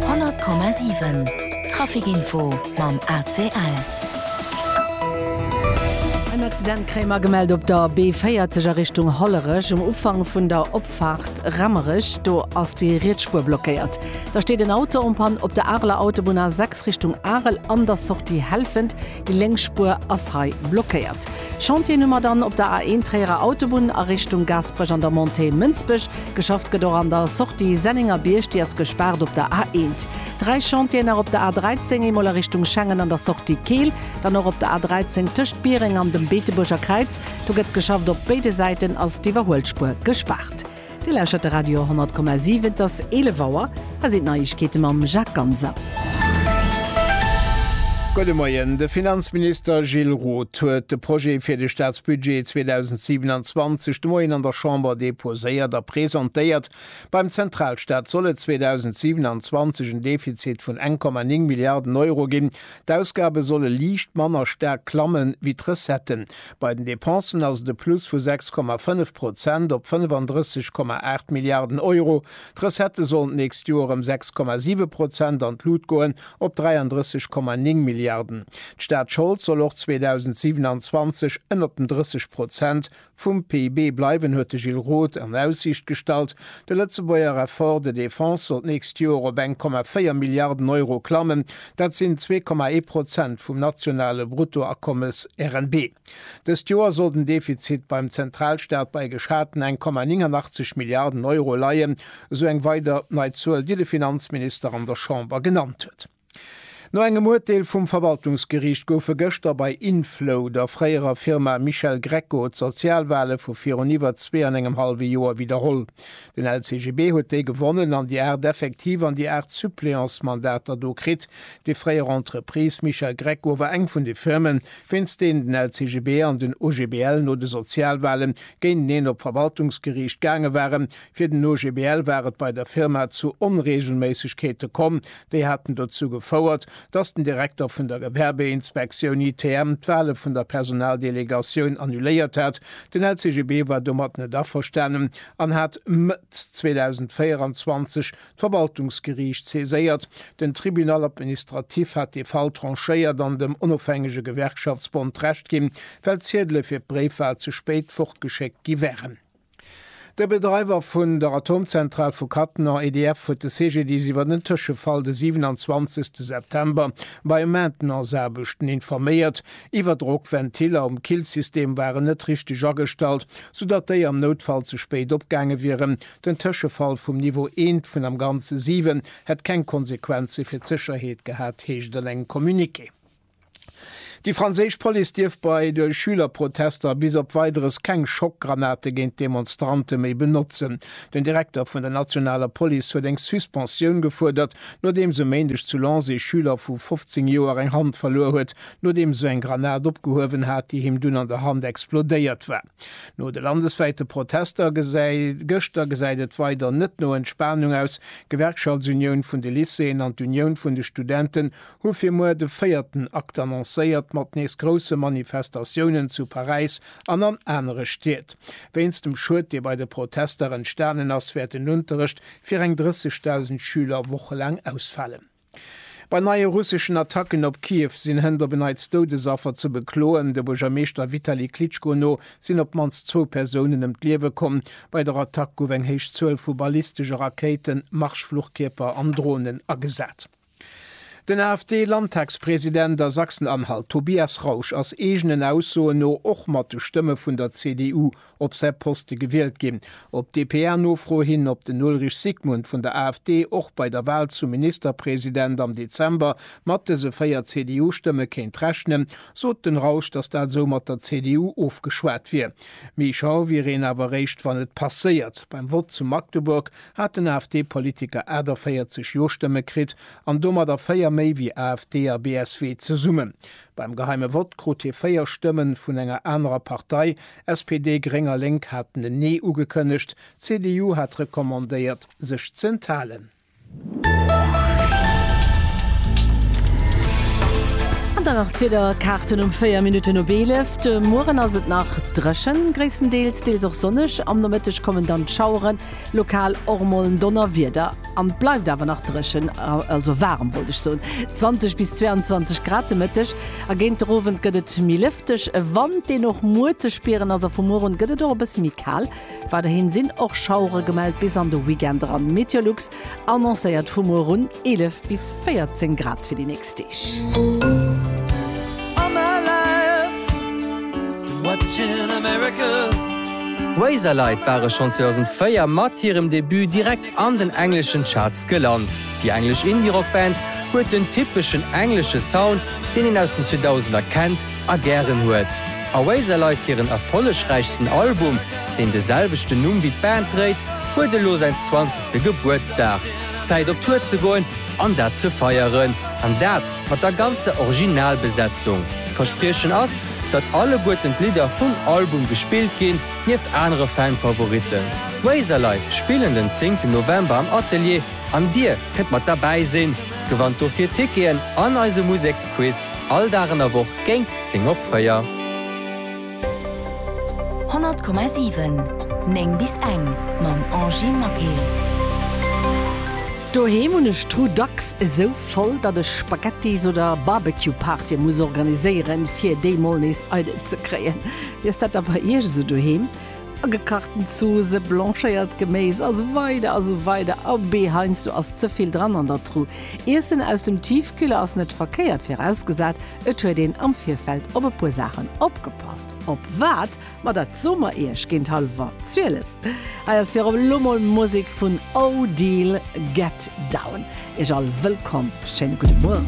100,7 Traficinfo mam ACL. En Accident kréie mer gemellt op der B40 a Richtung Hollerech, um Ufank vun der Opfaart Remmerech. Do ass déi riets Spuer blockéiert. Da steet en Auto en Panne op der Areler Autobunn A6 Richtung Arel an der Sortie Helfent. Déi lénk Spuer ass hei blockéiert. Chantieren hu mer dann op der A1 Tréierer Autobunn a Richtung Gaasperech an der Montée Mënsbech. Geschafft gëtt och an der Sortie Sennengerbierg, déi ass gespaart op der A1. Dräi Chantieren nach op der A13, eemol a Richtung Schengen an der Sortie Keel, dann och op der A13 tëscht Biereng an dem Beetebuerger Kräiz. Do gëtt geschafft, op béide Säiten ass d'Iwwerhuelspuer gespaart. Dir lauschert de Radio 10,7. Et ass 11 Auer. Hei sinn d'Neiegkeete mam Jacques Ganser. Gudde Moien. De Finanzminister Gilles Roth huet de Projet fir de Staatsbudget 2027 de Moien an der Chamber deposéiert a presentéiert. Beim Zentralstaat soll et 2027 en Defizit vun 1,9 Milliarden Euro ginn. D'Ausgabe solle liicht manner staark klammen, wéi d'Recetten. Bei den Dépensen ass et e Plus vu 6,5 Prozent op 35,8 Milliarden Euro. D'Recettë sollen d'nächst Joer ëm 6,7 Prozent an d'Lut goen, op 33,9 Milliarden. D'Staatsschold soll och 2027 ënnert den 30 Prozent vum PIB bleiwen, huet de Gilles Roth an Aussiicht gestallt. De Lëtzebuerger Effort de défense soll d'nächst Joer op 1,4 Milliarden Euro klammen. Dat sinn zwee Komma ee Prozent vum nationale Bruttoakommes, RNB. Dëst Joer soll den Defizit beim Zentralstaat bei geschaten eng Komma 89 Milliarden Euro leien, esou eng weider nei Zuel, déi de Finanzminister an der Chamber genannt huet. No engem Urteel vum Verwaltungsgeriicht goufe gëschter bei Inflow, der fréierer Firma Michel Greco, d'Sozialwale vu virun iwwer zwee an engem hallwe Joer widderholl. Den LCGB huet déi gewonnen an déi 8 effektiv an déi 8 Suppléantsmandater do kritt. Déi fréier Entreprise Michel Greco war eng vun de Firmen, wéinst deenen den LCGB an den OGBL no de Sozialwahle géinteneen op d'Verwaltungsgeriicht gaange waren. Fir den OGBL war et bei der Firma zu Onreegelméissegkeete komm, déi haten dozou gefouert, dass den Direkter vun der Gewerbeinspektioun, ITM, d'Wale vun der Personaldelegatioun annuléiert hat. Den LCGB war domat net averstanen an hat Mëtt 2024 d'Verwaltungsgeriicht saiséiert. Den Tribunal administratif hat dee Fall tranchéiert an dem onofhängege Gewerkschaftsbond Recht ginn, well d'Ziedele fir d'Bréifwal ze spéit fortgeschéckt gi wären. De Bedreiwer vun der Atomzentral vu Cattenom, EDF, huet de CGDIS iwwer den Tëschefall de 27 September bei Maintenanceaarbechten informéiert. Iwwerdrockventiller um Killsystem waren net richteg agestallt, soudatt déi am Noutfall ze spéit opgaange wieren. Den Tëschefall vum Niveau 1 vun am Ganze 7 hätt keng Konsequenze fir d'Sécherheet gehat, heescht et an engem Communiqué. Déi franséisch Police dierf bei de Schülerprotester bis op Weideres keng Schockgranate géint d'Demonstrante méi benotzen. Den Direkter vun der nationaler Police huet eng Suspensioun gefuerdert, nodeems e Méindeg zu Lens ee Schüler vu 15 Joer eng Hand verluer huet, nodeems esou eng Granat opgehuewen hat, déi him dunn an der Hand explodéiert war. No de landeswäite Protester gëschter gesäit et weider net no Entspanung aus. D'Gewerkschaftsunioun vun de Lycéeën an d'Unioun vun de Studenten hu fir muer de véierten Akt annoncéiert, mat nees grousse Manifestatiounen zu Paräis an an anere Stied. Wéinst dem Schued, dee bei de Protester entstanen ass, wäert den Unterrecht fir eng 30.000 Schüler wochelaang ausfalen. Bei neie russeschen Attacken op Kiew sinn hënt op en Neits Doudesaffer ze bekloen. De Buergermeeschter Vitali Klitschko no sinn op d'mannst zwou Persounen ëm d'Liewe komm. Bei der Attack gouf eng héich Zuel vu ballistesche Rakéiten, Marschfluchkierper an Dronen agesat. Den AfD-Landtagspresident a Sachsen-Anhalt Tobias Rausch ass eegenen Aussoen no och mat de Stëmme vun der CDU op säi Poste gewielt ginn. Op d'DPA-Nofro hin, ob den Ulrich Sigmund vun der AfD och bei der Wal zum Ministerpresident am Dezember mat dëse 4 CDU-Stëmme kéint rechnen, sot den Rausch, datt dat esou mat der CDU ofgeschwat wier. Méi schau wier een awer eréischt, wann et passéiert. Beim Vott zu Magdeburg hat den AfD-Politiker 48 Jo-Stëmme kritt an domadder véier méi wéi AfD a BSW zesummen. Beim geheime Vott krut hie véier Stëmme vun enger anerer Partei, SPD, Gréng a Lénk haten en Nee ugekënnegt, d'CDU hat recommandéiert, sech ze enthalen. An dann nach d'Wiederkaarten um 4 Minutten op 11. De Mueren ass et nach dréchen, gréisstendeels, deels och sonneg. Am Nomëtteg kommen dann d'Schaueren. Lokal och mol en Donnerwieder an et bleift awer nach dréchen, also waarem wollt ech soen. 20 bis 22 Grad de Mëtteg a géint de Owend gëtt et méi lëfteg. E Wand, deen och muer ze spieren ass a vu muer un gëtt et och e bësse méi kal. Weiderhi sinn och Schauere gemellt bis an de Weekend eran. Meteolux Annoncéiert vu muer un 11 bis 14 Grad fir déi nächst Deeg. Razorlight ware schonn 2004 mat hirem Debut direkt an den engleschen Charts gelant. Déi englesch Indie-Rock-Band huet den typeschen englesche Sound, deen een aus den 2000er kennt, a gären huet. Oasis leit hiren erfollegräichsten Album, deen de selwechten Numm wéi d'Band dréit, huet elo säin zwanzegste Gebuertsdag. Zäit op Tour ze goen an dat ze feieren. An dat mat der ganzer Originalbesetzung. D'Verspriechen ass, datt alleguerten d'Lidder vum Album gespillt ginn, nieft anere Fan-Favoritten. D'Oasis leit spillen den zéngten November am Atelier an dir kënnt mat derbäi sinn. Gewannt dofir Ticketen an eise Museksquiz. All Dag an der Woch géint 10 op 4. 100,7, 9 bis eng mam Angy Maquet. Doheem hunn ech d'Truh dacks esou voll, datt ech Spaghettis oder Barbecue-Partye muss organiséieren, fir déi mol nees eidel ze kréien. Wéi ass dat da bei Iech esou doheem? Gekachten Zoosse, blanchéiert Geméis a sou weider a sou weider. Abee, heiansdo ass ze vill dran an der Tru. Iessen aus dem Tiefkühler ass net verkéiert, virausgesat et huet een am Virfeld op e puer Saachen opgepasst. Op wat? Ma dat soe mer iech géint hallwer zwielef. Hei ass virop elo mol Musek vun Odile Get Down. Iech all wëllkomm, schéine gudde Mueren.